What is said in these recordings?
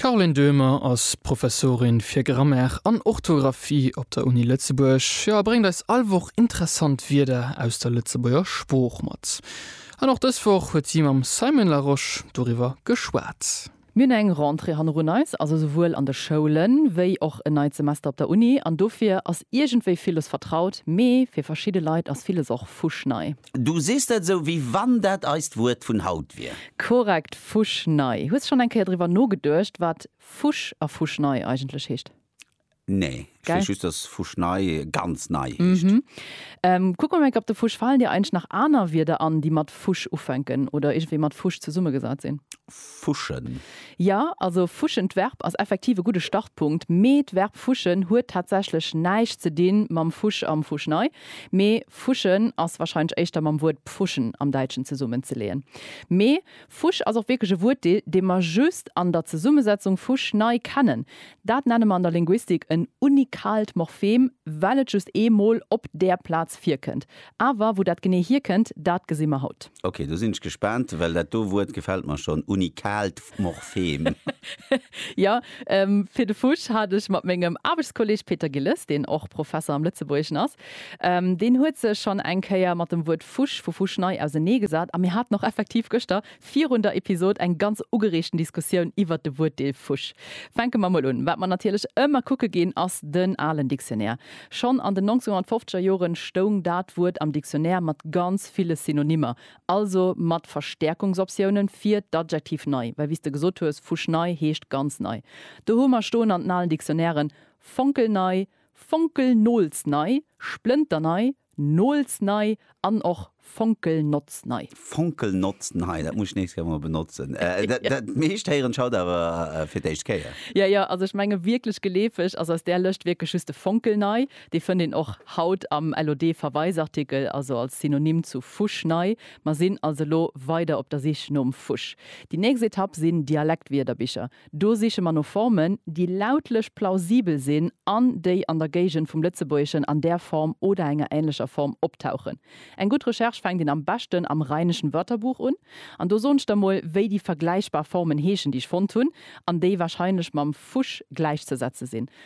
D'Caroline Döhmer ass Professorin fir Grammaire an Orthografie op der Uni Lëtzebuerg, jo a bréngt eis all Woch interessant Wierder aus der Lëtzebuerger Sprooch mat. An och dës Woch huet si mam Simon Larosche doriwwer geschwat. Mir hunn eng Rentrée hannerun eis, also souwuel an de Schoulen, wéi och en neit Semester op der Uni. An dofir ass iergendwéi villes vertraut, mee fir verschidde Leit ass villes och fuschnei. Du sees dat esou, wéi wann dat eist Wuert vun haut wier. Korrekt, fuschnei. Hues schonn eng Kéier driwwer nogeduecht, wat fusch a fuschnei eigentlech heescht? Nee, ech weess Gell? just, dass fuschnei ganz nei heescht. Mhm. Kuck mol eng Kéier op de Fusch. Falen dir eigentlech nach aner Wierder an, déi mat fusch ufänken oder iergendwéi mat fusch zesummegesat sinn? Fuschen. Jo, also fuschen, d'Verb, ass effektiv e gudde Startpunkt, mee d'Verb fuschen huet tatsächlech näischt ze di mam Fusch am Fuschnei. Mee fuschen ass warscheinlech éischter mam Wuert pfuschen am Däitschen zesummen ze leeën. Mee Fusch ass och wierklech e Wuert, dee mer just an der Zesummesetzung Fusch nei kennen. Dat nenne mer an der Linguistik en unikaalt Morphem, well et just ee Mol op där Plaz virkënnt. Awer wou dat genee hierkënnt, dat gesi mer haut. Ok, do sinn ech gespaant, well dat do Wuert gefält mer schonn, unikaalt Morphem. Jo, fir de Fusch hat ech mat mengem Aarbechtskolleg Peter Gilles, deen och Professer am Lëtzebuergeschen ass. Deen huet sech schonn eng Kéier mat dem Wuert Fusch vu Fuschnei auseneegesat a mir haten och effektiv gëschter virun der Episod eng ganz ugereegten Diskussioun iwwert de Wuertdeel Fusch. Fänke mer mol un. Wat mer natierlech ëmmer kucke ginn, ass den alen Dictionnaire. Schonn an den 1950er Joren stoung dat Wuert am Dictionnaire mat ganz ville Synonymmer Also mat Verstärkungsoptiounen fir d'Adjektiv nei, well wéi s de gesot hues, fuschnei heescht ganz nei. Do hu mer stoen an den alen Dictionnairen, fonkelnei, fonkelnoolsnei, splënternei, noolsnei an och fonkelnotznei. Fonkelnotznei, dat muss ech d'nächst Kéier mol benotzen. Dat meescht héieren ech haut awer fir d'éischt Kéier. Jo, jo, also ech menge wierklech geleefeg ass aus där Lëscht wierklech just de fonkelnei. Dee fënnt een och haut am LOD-Verweisartikel, also als Synonym zu fuschnei. Mer sinn also elo weider op der Sich nom fusch. Déi nächst Etapp sinn Dialektwierderbicher. Do siche mer no Formen, déi lautlech plausibel sinn an déi an der Géigend vum Lëtzebuergeschen an där Form oder enger änlecher Form optauchen. Eng gutt Recherche fänkt een am beschten am Rheinischen Wörterbuch un. An do soen ech der mol, wéi déi vergläichbar Formen heeschen, déi ech fonnt hunn an déi warscheinlech mam fusch gläichzesetze sinn.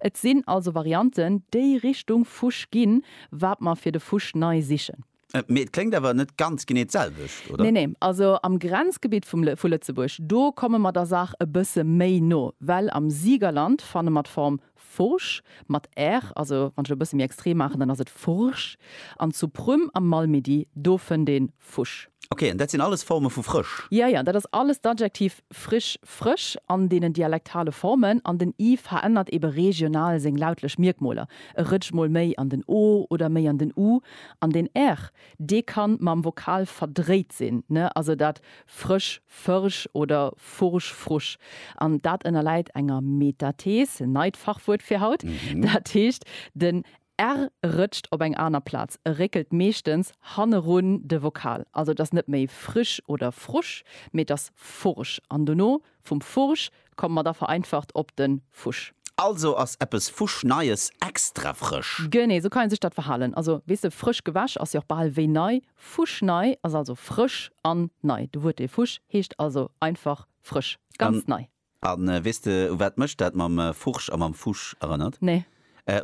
Et sinn also Varianten, déi Richtung Fusch ginn, wat mer fir de Fusch nei sichen. Mee et kléngt awer net ganz genee d'selwecht, oder? Nee, nee. Also am Grenzgebitt vum, vu Lëtzebuerg, do komme mer der Saach e bësse méi no, well am Siegerland fanne mer d'Form Furch mat r, also wann ech et e bësse méi extrem maachen, dann ass et Furch, an zu Prüm am Malmedy, do fënnt ee Fusch. Ok, an dat sinn alles Forme vu frësch? Jo, jo, dat ass alles d'Adjektiv frisch, frësch, an deenen dialektale Formen. An den i verännert ebe regional seng lautlech Mierkmoler, e rëtscht mol méi an den o oder méi an den u. An den r, dee kann mam Vokal verdréit sinn, ne, also dat frësch, fërsch oder fursch, frusch. An dat ënnerläit enger Metathees, neit Fachwuert fir haut, dat heescht, den R rëtscht op eng aner Plaz, e réckelt meeschtens hannerun de Vokal. Also et ass net méi frisch oder frusch, mee et ass fursch an dono vum fursch komme mer da vereinfacht op de fusch. Also ass eppes fuschneies extra frësch. Genee sou kann ee sech dat verhalen. Also weess de, frësch gewäsch ass jo och bal wéi nei. Fuschnei ass also frësch an nei. De Wuertdeel fusch heescht also einfach frësch, ganz nei. A weess de, u wat mech dat mam Furch a mam Fusch erënnert? Nee.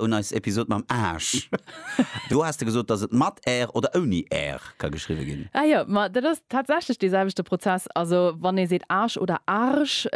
Un eis Episod mam Aarsch. Do has de gesot, dass et mat Aer oder ouni Aer ka geschriwwe ginn. Ah jo, ma dat ass tatsächlech dee selwechte Prozess. Also, wann ee seet Aarsch oder Arsch,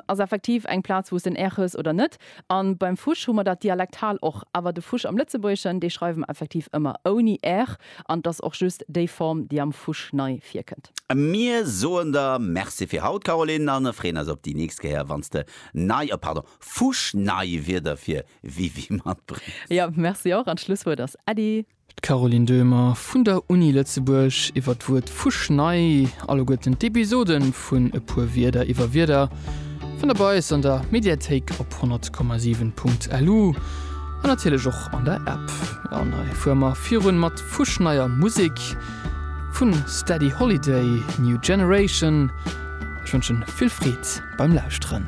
ass effektiv eng Plaz, wou s de en Aer hues oder net. A beim Fusch hu mer dat dialektal och. Awer de Fusch am Lëtzebuergeschen, dee schreiwe mer effektiv ëmmer ouni r, an et ass och just déi Form, déi am Fusch nei virkënnt. Mir soen der Merci fir haut, Caroline, a freeën eis op déi nächst Kéier, wann s de nei, oh pardon, fuschnei Wierder fir Wiwi matbréngs. Jo, Merci och, an d'Schlusswuert ass Äddi. D'Caroline Döhmer vun der Uni Lëtzebuerg iwwer d'Wuert fuschnei, alleguerten d'Episode vun E puer Wierder iwwer Wierder fannt der bei eis an der Mediathéik op 100,7 Punkt lu an natierlech och an der App. An hei fuere mer virun mat fuschneier Musek vu Steady Holiday, New Generation. Ech wënschen vill Freed beim Lauschteren.